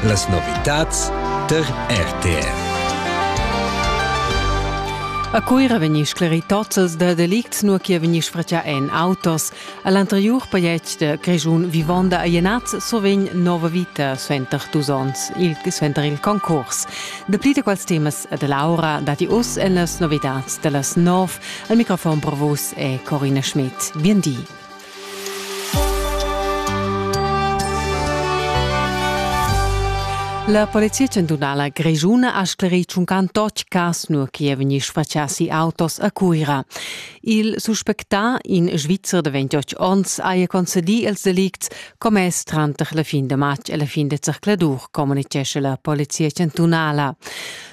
Las novitads tar RTR. A Cuira vegni sclerì tozels da delicts nua che vegni sfratgià en autos. All'anteriur pajais da Grischun vivonda a Jenaz survegn nova vita suenter dus onns, il, suenter il concurs. Dapli da quels temas e da Laura dati us en las novitads da las nov. Al microfon provus è Corina Schmidt. Bien di. La polizia chantunala grischuna ha sclerì tschuncan tot cas nua che è vegni sfatschà si autos a Cuira. Il suspectà, in Svizzer de 28 onns, haja concedì els delicts commess tranter la fin de matg e la fin de zercladur, communicesce la polizia chantunala.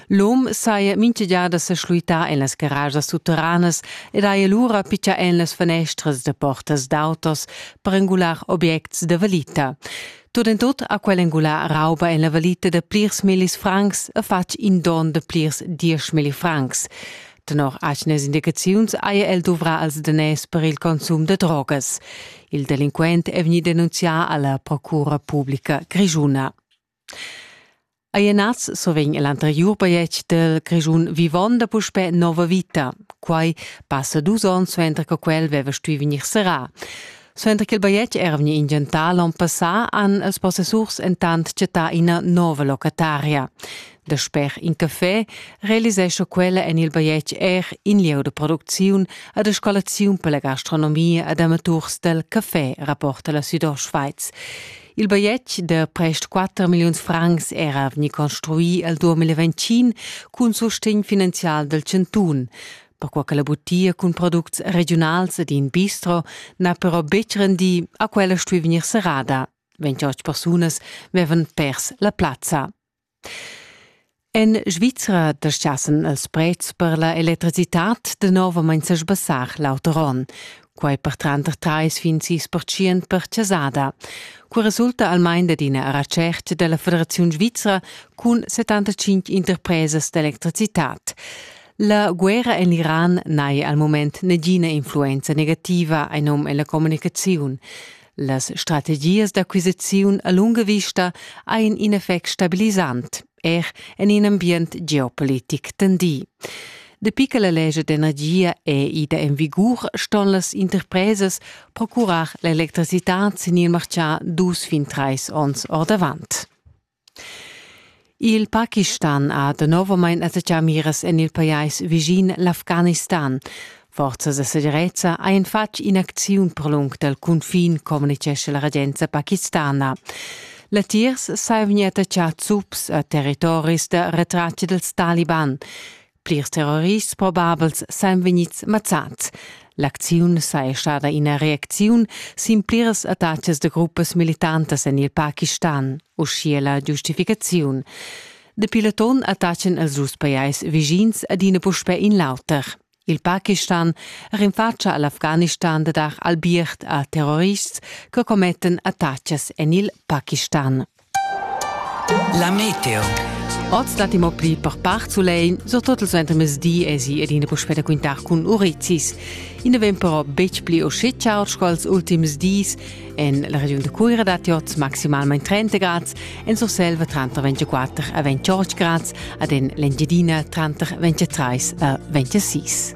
L'um saja minchagiada seschluità en las garagias sutteranas ed haja lura pitschà en las fanestras da portas d'autos per engular objects da valita. Tot en tot ha quel engulà rauba en la valita da plirs millis francs e fatg in don da plirs diesch milli francs. Tenor atgnas indicaziuns haja el duvrà als daners per il consum da drogas. Il delinquent è vegnì denunzià alla Procura publica grischuna. Ei e nas survegn l'anteriur bajetg dil Grischun vivonda puspè nova vita. Quai passa dus onns suenter che quel veva stuì vegnir serrà. Suenter che il bajetg era vegni inventà l'onn passà, han ils possessurs entant chattà ina nova locataria. Da sper in café realisescha quella en il bajetg er in lieu da producziun e da scolaziun per la gastronomia ed amaturs dal café, rapporta la Südostschweiz. Il bajetg da prest 4 milliuns francs era vegni construì al 2025 cun sustegn finanzial del Cantun. Perquai che la butia cun products regionals ed in bistro n'ha però betg rendì a quella stuì vegnir serrada. 28 persunas vevan pers la plazza. En Svizra dastgassen els prets per la electricitad danovamein sesbassar l'auter onn. Quei per tranter treis fin sis percient per chasada. Cu resulta almein dad ina retscherca dalla Federaziun Svizra cun 75 interpresas d'electricitad. La guerra en l'Iran n'hai al moment negina influenza negativa ein num ella communicaziun. Las strategias d'acquisiziun a lunga vista ein in effect stabilisant, er en in ambient geopolitic tendì. Dapi che la legge d'energia è ida en vigur, ston las interpresas procurar l'electricitad sin il martgà dus fin trais onns ordavant. Il Pakistan ha danovamein attacchà miras en il pajais vischin l'Afghanistan. Forzas da segirezza ein fatg in'acziun per lung dal cunfin, communitgescha la regenza pakistana. Latiers sai vegnir attaccà zups a territoris da retratg dals taliban. Plirs terrorists probabels san vegnids mazzads. L'acziun saja stada ina reacziun sin pliras attacas da gruppas militantas en il Pakistan, uschia la giustificaziun. Dapi l'atun attachan els dus pajais vischins adina puspè in l'auter. Il Pakistan rinfatscha a l'Afghanistan da dar albiert a terrorists che commettan attacas en il Pakistan. La meteo. Oz dat imo pli per part sulein, surtut il suentermezdi esi ed ina puspè da quintar cun urizis. I ne vegn però betg pli uscì ciao sco als ultims dis. En la regiun da Cuira datti oz maximalmain 30 grads, en Surselva tranter 24 e 28 grads, ad en l'Engiadina tranter 23 e 26.